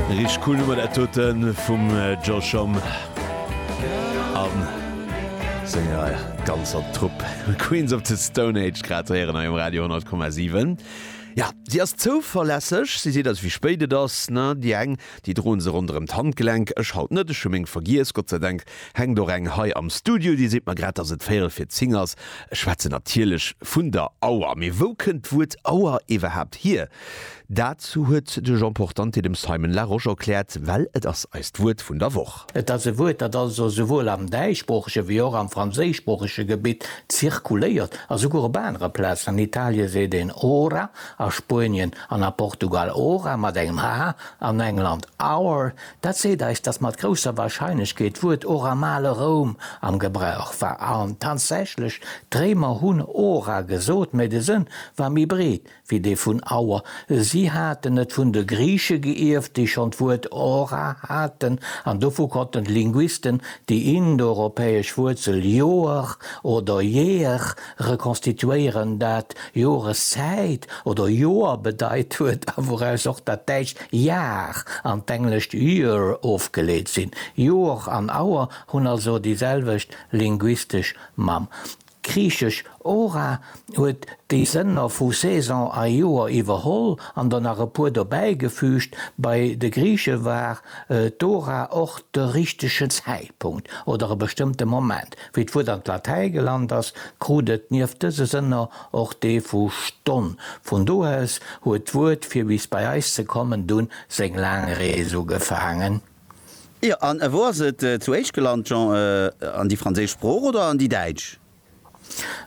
Richteg cool Nummer dat doten vum Josh Homme an senger ganzer Trupp. Queens of the Stone Age grad ze héieren hei um Radio 100,7. Ja, si ass zouverlässeg, si seet eis wéi spéit et ass, ne? Déi eng, déi droen se ronderëm d'Handgelenk, ech halt net, ech hu meng vergiess, Gott sei Dank hänkt och eng hei am Studio, déi seet mer grad, dass et véierel fir zing ass. Ech schwätzen natierlech vun der Auer. Mee wou kënnt d'Wuert Auer iwwerhaapt hier? Dat huet de Jean Portante dem Simon Larosche erkläert, well et ass eist Wuert vun der Woch. Et ass e Wuert, dat also souwuel am däischsproochege wéi och am franséischsproochege Gebitt zirkuléiert. A souguer op anere Plazen, an Italie seet een ora, a Spuenien an a Portugal hora mat engem h, an England hour. Dat seet eis, datt mat grousser Warscheinlechkeet d'Wuert och am ale Roum am Gebrauch war. An tatsächlech, d'Réimer hunn ora gesot, mä de Sënn war méi breet, wéi dee vun Our. Si haten et vun de Griiche geierft, déi schonn d'Wuert Ora haten, an dovu konnten d'Linguisten déi indoeuropäesch Wuerzel Ioar oder Year rekonstituéieren, dat Joreszäit oder Joer bedeit huet a wouraus och dat däitscht Jahr an d'englescht year ofgeleet sinn. Ioar an Our hunn also déi selwecht linguistesch Mamm. D'griichesch Ora huet déi Sënner vu Saison a Joer iwwerholl an der nach e puer dobäigefüügt. Bei de Griiche war d'Ora och de richtegen Zäitpunkt oder e bestëmmte Moment. Wéi d'Wuert an d'Latäi gelant ass, krut et nieft dëse Sënner och dee vu Stonn. Vun do aus huet d'Wuert, fir bis bei eis ze kommen, dunn seng laang Rees ugefaangen. Jo, an wou ass et zuéischt gelant, Jean? An déi franséisch Sprooch oder an déi däitsch?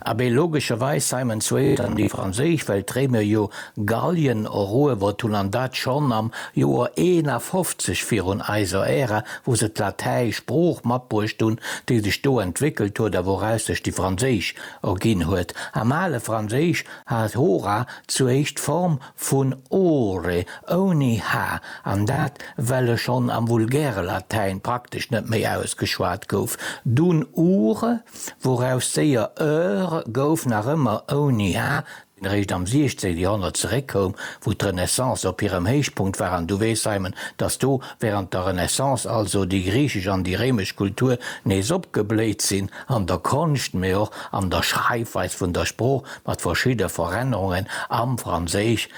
Abee, logescherweis, Simon, zuéischt an déi franséisch, well d'Réimer jo Gallien eruewert hunn, an dat schonn am Joer 51 virun eiser Ära, wou se d'Latäisch Sprooch matbruecht hunn, déi sech do entwéckelt huet a wouraus sech déi franséisch erginn huet. Am ale Franséisch hat hora zuéischt d'Form Vun ore, ouni h, an dat well e schonn am vulgäre Latäin praktesch net méi ausgeschwat gouf, dunn ure, wouraus séier eure gouf, nach ëmmer ouni h, deen eréischt am 16 Joerhonnert zeréckkoum, wou d'Renaissance op hirem Héichpunkt war. An du weess, Simon, datt do während der Renaissance also déi griichesch an déi réimesch Kultur nees opgebléit sinn, an der Konscht, mee och an der Schreifweis vun der Sprooch. mat verschidde Verännerungen am Franséisch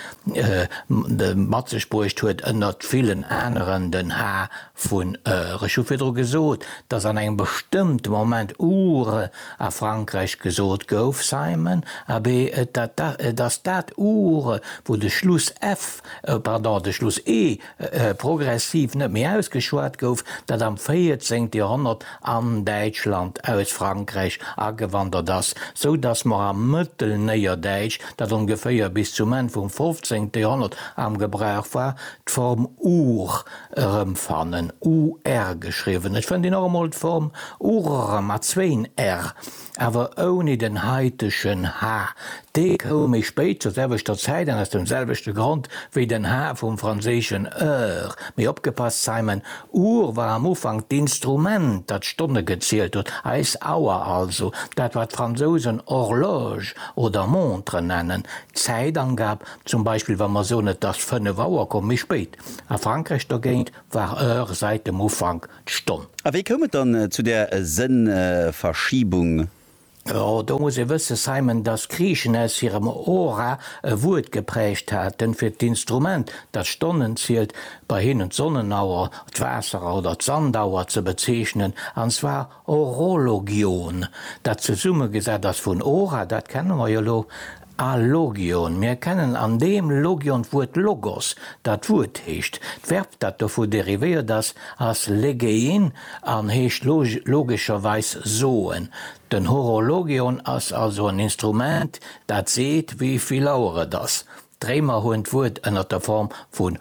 mat sech bruecht huet, ënnert villen aneren den h vu re. Ech hu virdru gesot, dass an engem bestëmmte Moment u re a Frankräich gesot gouf, Simon, abee, et ass dat u re, wou de Schluss f, pardon, de Schluss e progressiv net méi ausgeschwat gouf, dat am 14. Joerhonnert an Däitschland aus Frankräich agewandert ass, sou datt mer am Mëttelnéierdäitsch, dat ongeféier bis zum Enn vum 15. Joerhonnert am Gebrauch war, d'Form ur erëmfannen, ur geschriwwen. Et fënnt een och emol d'Form urr mat zwéin r. Awer ouni den heitegen Ha. Dee koum méi spéit zur selwechter Zäit an aus dem selwechte Grond wéi den Ha vum franséischen Heure. Mee opgepasst, Simon, Uhr war am Ufank d'Instrument, dat d'Stonne gezielt huet, eis Auer also, dat wat d'Fransousen Horloge oder Montre nennen. D'Zäitangab, zum Beispill wa mer soen et ass fënnef Auer, koum méi spéit. A Frankräich dogéint war Heure säit dem Ufank. d'Stonn. A wéi koum et dann zu där Sënnverschiebung? Jo, do muss ee wëssen, Simon, dass Griichen aus hirem Hora e Wuert geprägt haten fir d'Instrument, dat d'Stonnen zielt, bei hinnen d'Sonnenauer, d'Waasserer oder d'Sandauer ze bezeechnen, an zwar horologion, dat zesummegesat ass vun hora, dat kenne mer jo elo, A Logion, mir kennen an deem Logion d'Wuert Logos, dat Wuert heescht. D'Verb, dat dovu derivéiert ass, ass legein an heescht logescherweis soen. Den Horologion ass also en Instrument, dat seet, wéi vill Auer et ass. D'Réimer hunn d'Wuert ënner der Form vun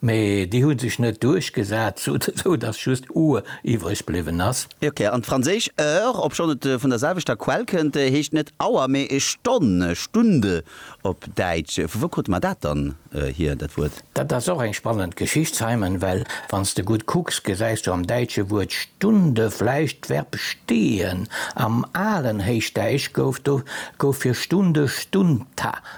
Mee déi hu sech net duerchgesat, sou datt just Our iwwreg bliwwen ass. Ok, an d'franséisch heure, obschonn et vun der selwechter Quell kënnt, heescht net Hour, mee Stonn, Stunde op Däitsch. Vu wou krute mer dat dann hier, dat Wuert? Dat ass och eng spannend Geschicht, Simon, well wann s de gutt kucks, gesäis du am däitsche Wuert Stunde vläicht d'Verb stehen. Am alen Héichdäisch gouf do gouf fir Stunde Stunta.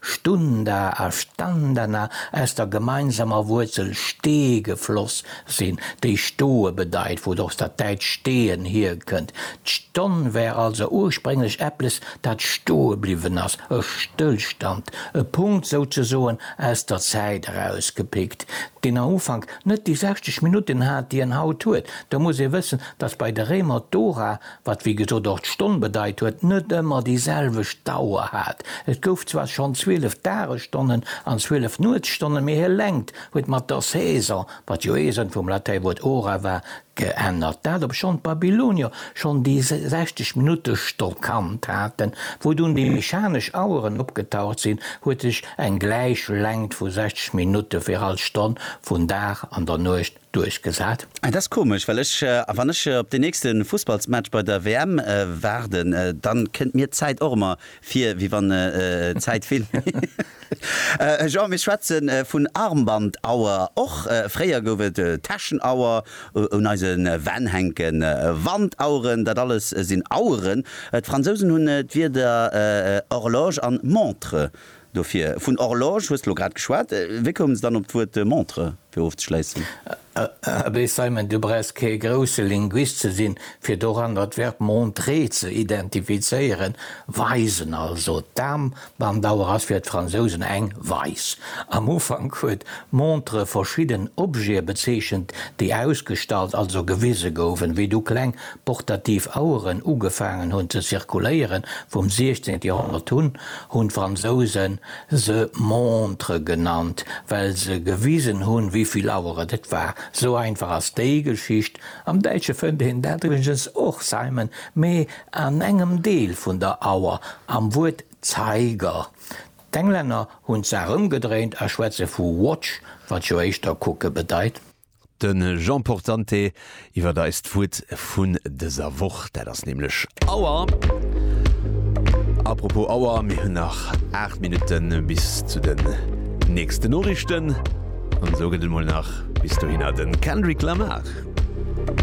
Stunda a Standana aus der gemeinsamer Wuerzel ste gefloss sinn, déi stoe bedeit, wou et och dat däitscht stehen hierkënnt. D'Stonn wär also ursprénglech eppes, dat stoe bliwwen ass, e Stëllstand, e Punkt souzesoen aus der Zäit erausgepickt, deen am Ufank net déi 60 Minutten hat, déi en haut huet. Da muss ee wëssen, dass bei de Réimer d'Ora wat wéi gesot och d'Stonn bedeit huet, net ëmmer déi selwecht Dauer hat. Et gouf zwar schonn 12 Dagesstonnen an 12 Nuetsstonnen, mee hir Längt huet mat der Saison, wat jo ee Sënn vum Latäiwuert hora war, geännert. Dat obschonn d'Babylonier schonn déi 60 Minutte Stock kannt haten. Wou dunn déi mechanesch Aueren opgetaucht sinn, huet sech eng gläich Längt vu 60 Minutte fir all Stonn vun Dag an der Nuecht duerchgesat. Ah dat ass komesch, well ech, wann ech op deen nächste Fussballsmatch bei der WM waarden, dann kënnt mir d'Zäit och emmer vir wéi wann d'Zäit vill méi. Jean, Mir schwätze vun Armbandauer, och fréier gouf et Täschenauer un eise Wänn hänken, Wandaueren, dat alles sinn Aueren. D'Fransousen hunn d'Wierder horloge an montre. Dofir, vun Horloge hues de lo grad geschwat, wéi koumen se dann op d'Wuert Montre, fir ofzeschléissen? Abee Simon, du brauchs kee grousse Linguist ze sinn, fir doranner d'Verb montrer ze identifizéieren, weisen. Also d'Aarmbandauer ass fir d'Fransousen eng weis. Am Ufank huet montre verschidden Objete bezeechent, déi ausgestallt, also gewise goufen, wéi du kleng Portativ Aueren ugefaangen hunn ze zirkuléieren vum 16 Joerhonnert un, hunn d'Fransousen se Montre genannt, well se gewisen hunn wéi vill Aueren et war. Sou einfach ass déi Geschicht. Am Däitsche fënnt een dat iwwregens och, Zeimen, mee an engem Deel vun der Auer, am Wuert Zeiger. D'Englänner hunn d'Saach ëmgedréint a schwätze vu watch, wat jo éischter kucke bedeit. De Jean Portante iwwert eist Wuert vun dëser Woch, dat ass nämlech Auer. Apropos Auer, mir hunn nach 8 Minutte bis zu den nächsten Noriichten an esou gëtt et mol nach bis dohinner de Kendrick Lamar.